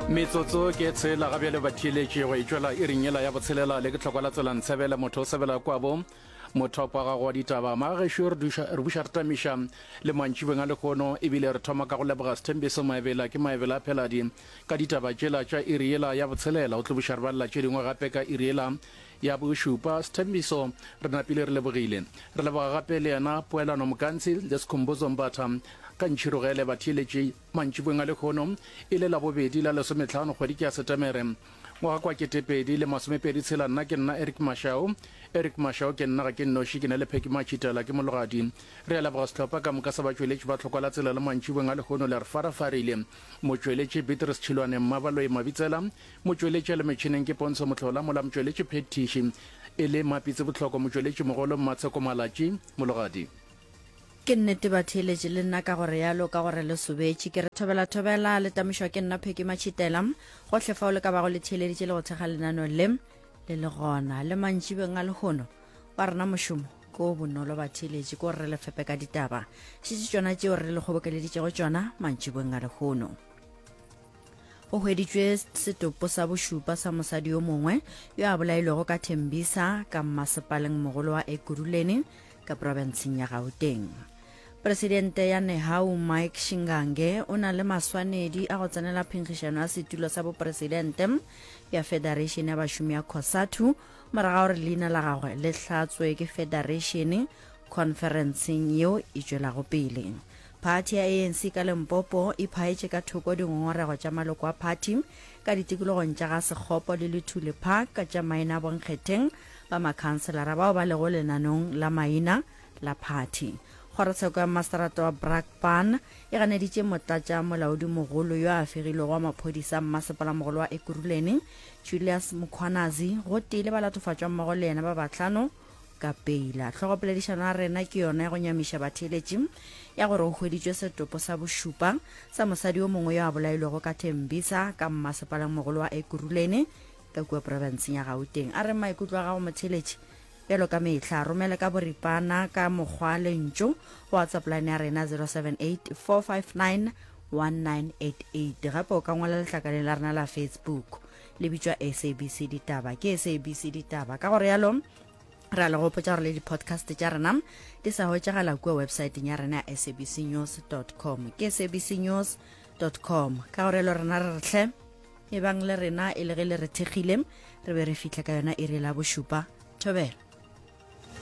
metsotso ke tshela ga bjale batheeletše go e tšwela e ringela ya botshelela le ke tlhokwa la tswela ntshebela motho o sebela kwabo mothopo wa gago wa ditaba magešo re buša re tamiša le mantšibeng a lekgono ebile re thoma ka go leboga sethembiso maebela ke maebela a pheladi ka ditaba tšela tša iriela ya botshelela o tlobuša re balela tše dingwe gape ka iriela Ya bošupa, Sthembiso, re napile re lebogile. Re leboga gape le yena Poelano Mokantshi le Skhumbuzo Mbatha. Ka Ntšhirogele ba theeletše mantšibong a lekgono e le labobedi la lesometlhano kgwedi ke ya Setemere ngwaga kwa ketepedi le masomepedi tshela nna ke nna Eric Mashao Eric Mashao ke nna ga ke nnoši ke na le Pheki Machitela ke mologadi re a leboga sehlopha ka moka sa batšweletši ba tlhokwa la tsela le mantšibong a lekgono le re farafarile motšweletši Beatrice Tšhilwane Mmabaloi Mabitsela Motšweletši a le metšhineng ke Pontsho Mohlola, mola motšweletši phethiši e le Mmapitsi Bohloko, motšweletši mogolo Mmatsheko Malatši, mologadi. Ke nnete ba theeletše le nna ka go realo ka gore le sobetše. Ke re thobela thobela, le tamišwa ke nna Pheki Matšhitela. Gohle fao le ka bago le theeleditše le go thekga lenaneo le, le le gona. Le mantšibeng a lehono, wa rena mošomo ke o bonolo batheeletši, ke gore re le fepe ka ditaba. Šetše tšona tšeo re le kgobokeleditšego tšona mantšibeng a lehono. go hweditšwe setopo sa bošupa sa mosadi yo mongwe yo a bolailwego ka thembisa ka mmasepaleng mogolo wa ekuruleni ka profenseng ya gauteng presidente ya nehau mike shingange o na le maswanedi a go tsenela phenkgišano ya setulo sa bopresidente ya federation ya bašomi ya cosatu moraga gore leina la gagwe le hlatswe ke federation conferenceng yeo e tšwelago pele Phathi ya ANC ka Limpopo e phaetše ka thoko dingongorego tša maloko a phathi ka ditikologong tša ga Sekgopo le Luthuli Park ka tša maina a bonkgetheng ba makhanselara bao ba lego lenanong la maina la phathi. Kgorotsheko ya Mmaseterata wa Brakpan e ganeditše motlatša molaodimogolo yo a fegilwego wa maphodisa a mmasepalamogolo wa Ekurhuleni, Julius Mkhwanazi, gotee le ba latofatšwammogo le yena ba bahlano, ka peila. Hlogopoledišano ya rena ke yona ya go nyamiša batheeletši ya gore go hweditšwe setopo sa bošupa sa mosadi yo mongwe yo a bolailwego ka Tembisa ka mmasepalangmogolo wa Ekurhuleni ka kua porofenseng ya Gauteng. A re maikutlo a gago motheeletši bjalo ka mehla a romele ka boripana ka mokgwa lentšu go whatsapp line ya rena 078 459 1988 gape o ka ngwala letlakaleng la rena la facebook le bitšwa sabc ditaba ke sabc ditaba ka gore yalo re a le gopotsa gore le di-podcast tša rena di sa hwetšagala kua websaeteng ya rena ya sabc news com ke sabc news com ka gore lo rena re retlhe e bang le rena e le ge le re thekgile re be re fitlhe ka yona e re la bošupa thobela